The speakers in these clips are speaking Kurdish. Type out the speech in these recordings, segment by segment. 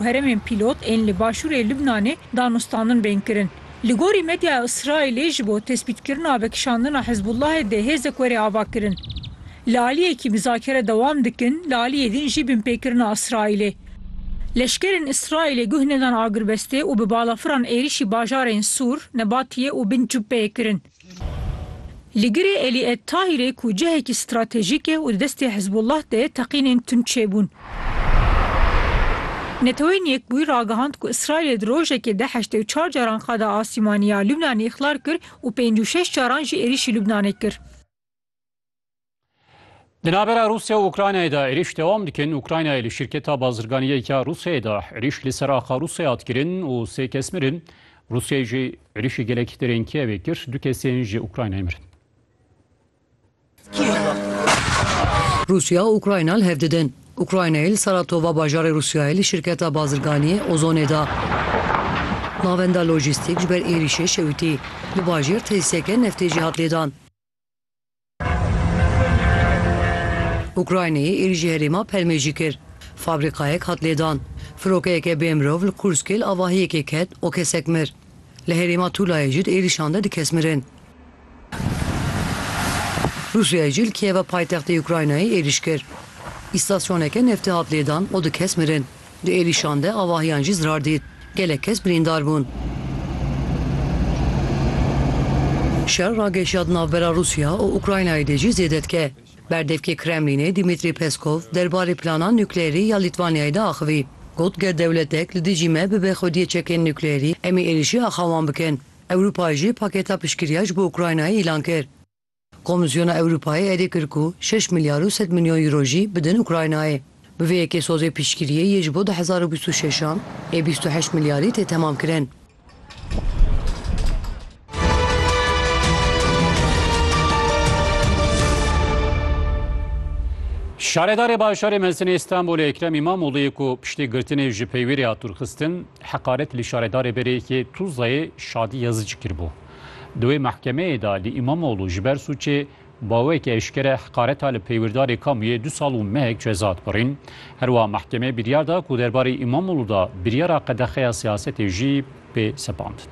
Herêmên pîlot ên li başûrê Libnanê danûstandin bên kirin. Li gorî medyaya Îsraîlê ji bo tespîtkirina vekişandina Hizbullahê dê hêzek were avakirin. Li aliyekî mizakere dewam dikin, li aliyê din jî binpêkirina Îsraîlê. Leşkerên Îsraîlê guh nedan agirbestê û bi balafiran êrîşî bajarên Sûr, Nebatiyê û Bin Cubeyê kirin. Li girê Elî Ed Tahîrê ku cihekî stratejîk e û di destê Hizbullah de ye teqînên tund çêbûn. Neteweyên Yekbûyî ragihand ku Îsraîlê di rojekê de heştê û çar caran qada asîmanî ya Lubnanê îxlal kir û pêncî û şeş caran jî êrîşî Lubnanê kir. Di navbera Rûsya û Ukraynayê de êrîş dewam dikin. Ukraynayê li şirketa bazirganiyeke Rûsyayê de êrîş li ser axa Rûsyayê hat kirin û sê kes mirin. Rûsyayê jî êrîşê gelekî derên Kiyevê kir. Du kesên ji Ukraynayê mirin. Rûsya û Ukrayna li hev didin. Ukraynayê li Saratova bajarê Rûsyayê li şirketa bazirganiyê Ozonê de navenda lojîstîk ji ber êrîşê şewitî. Li bajêr tesîseke neftê jî hat lêdan. Ukraynayê êrîşê herêma Pelmêjî kir. Fabrîkayek hat lêdan. Firokeyeke bê mirov li Kurskê li avahiyekê ket û kesek mir. Li herêma Tulayê jî di êrîşan de du kes mirin. Rûsyayê jî li Kîyeva paytextê Ukraynayê êrîş kir. Îstasyoneke neftê hat lêdan û du kes mirin. Di êrîşan de avahiyan jî zirar dît. Gelek kes birîndar bûn. Şer ragihişiya di navbera Rûsya û Ukraynayê de jî zêde dike. Berdevkê Kremlînê Dimitrî Peskov der barê plana nukleyerî ya Lîtwanyayê de axivî. Got, Ger dewletek li dijî me bibe xwediyê çekên nukleyerî, em ê êrîşî axa wan bikin. Ewropayê jî paketa piştgiriya ji bo Ukraynayê îlan kir. Komîsyona Ewropayê êdî kir ku şeş milyar û sed milyon euro jî bidin Ukraynayê. Bi vê yekê sozê piştgiriyê yê ji bo du hezar û bîst û şeş an ê bîst û heşt milyarî tê temamkirin. Şaredarê Bajarê Mezin ê Stenbolê Ekrem Îmamoglûyê ku piştî girtinê ji peywêrê hat dûrxistin, heqaret li şaredarê berê yekê Tuzlayê Şadî Yazicî kiribû. Di wê mehkemeyê de li Îmamoglû ji ber sûcê baweke eşkere heqareta li peywirdarê kamûyê du sal û mehek ceza dibirîn. Herwiha mehkemeyê biryar da ku derbarê Îmamoglû de biryara qedexeya siyasetê jî bê sepandin.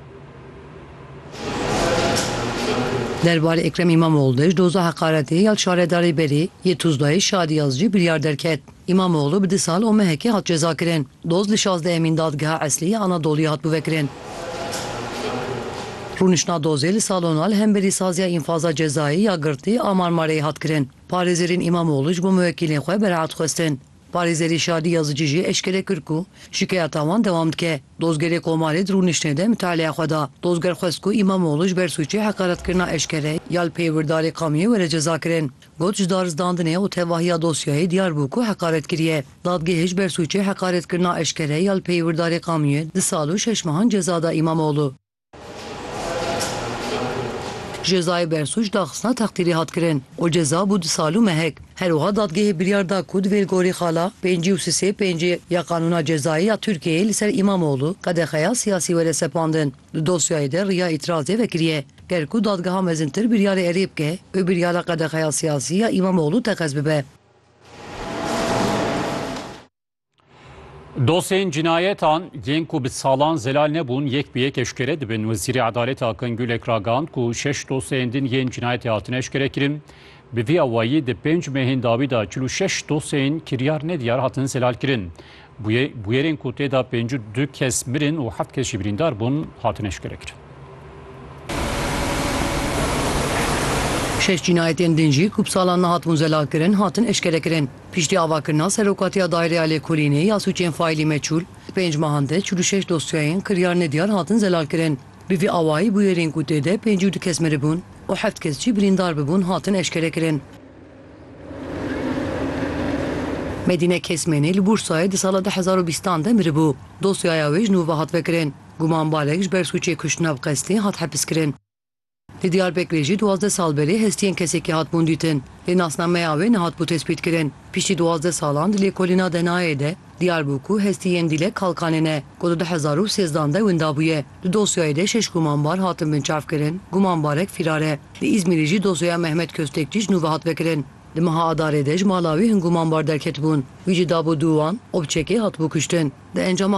Derbarê Ekrem Îmamoglû de ji doza heqaretê ya li şaredarê berê yê Tuzdayê Şadiyaz jî biryar derket. Îmamoglû bi du sal û mehekê hat cezakirin. Doz li şazdehemîn Dadgeha Eslî ya Anadoluyê hat bivekirin. Rûniştna dozê li salona li hemberî saziya înfaza cezayê ya girtî a Marmareyê hat kirin. Parêzerên Îmamoglû ji bo muwekîlên xwe bereat xwestin. Parêzerî Şadî Yazicî jî eşkere kir ku şikayeta wan dewam dike. Dozgerê Komarê di rûniştinê de mitaleya xwe da. Dozger xwest ku Îmamoglû ji ber sûcê heqaretkirina eşkere ya li pey wirdarê qamiyê were cezakirin. Got ji darizdandinê û tevahiya dosyayê diyar bû ku heqaret kiriye. Dadgehê ji ber sûcê heqaretkirina eşkere ya li peyê wirdarê Qamûyê du sal û şeş mehan ceza da Îmamoglû. Jezayê bersûc daxistina texdîrî hat kirin û ceza bû du sal û mehek. Her wiha dadgehê biryar da ku divê li gorî xala pêncî û sisê pêncî ya Qanûna Cezayê ya Tirkiyeyê li ser Îmamoglû qedexeya siyasî were sepandin. Di dosyayê de riya îtirazê vekiriye. Ger ku dadgeha mezintir biryarê erê bike, bi biryara qedexeya siyasî ya Îmamoglû teqez bibe. Dosyeyên cînayetan yên ku bi salan zelal nebûn yek bi yek eşkere dibin. Wezîrê Edalete Akın Gülek ragihand ku şeş dosyeyên din yên cînayetê hatine eşkerekirin. Bi vî awayî di pênc mehên dawî de çil û şeş dosyeyên kiryar nediyar hatin zelalkirin. Bûyerên ku tê de pêncî û du kes mirin û heft kes jî birîndar bûn, hatin eşkerekirin. Şeş cînayetên din jî ku bi salan nehatibûn zelakirin, hatin eşkerekirin. Piştî avakirina Serokatiya Daireya Lêkolînê ya Sûcên Faîlî Meçûl, di pênc mehan de çil û şeş dosyayên kiryar nediyar hatin zelalkirin. Bi vî awayî bûyerên ku tê de pêncî û du kes miribûn û heft kes jî birîndar bibûn, hatin eşkerekirin. Medîne Kesmênî li Bûrsayê di sala du hezar û bîstan de miribû. Dosyaya wê ji nû ve hat vekirin. Gumanbarek ji ber sûcê kuştina bi qestê hat hepiskirin. Li Diyarbekirê jî duwazdeh sal berê hestiyên kesekî hatibûn dîtin, lê nasnameya wê nehatibû tespîtkirin. Piştî duwazdeh salan di lêkolîna Denayê de, Diyar bû ku hestî yên Dîlek Kalkanê ne, ku di du hezar û sêzdan de winda bûye. Di dosyayê de şeş gumanbar hatin binçavkirin, gumanbarek fîrar e. Li Îzmîrê jî dosyaya Mehmet Kostekçî ji nû ve hat vekirin. Di meha Adarê de ji mala wî hin gumanbar derketibûn. Wî jî dabû dû wan û bi çekê hatibû kuştin. Di encama.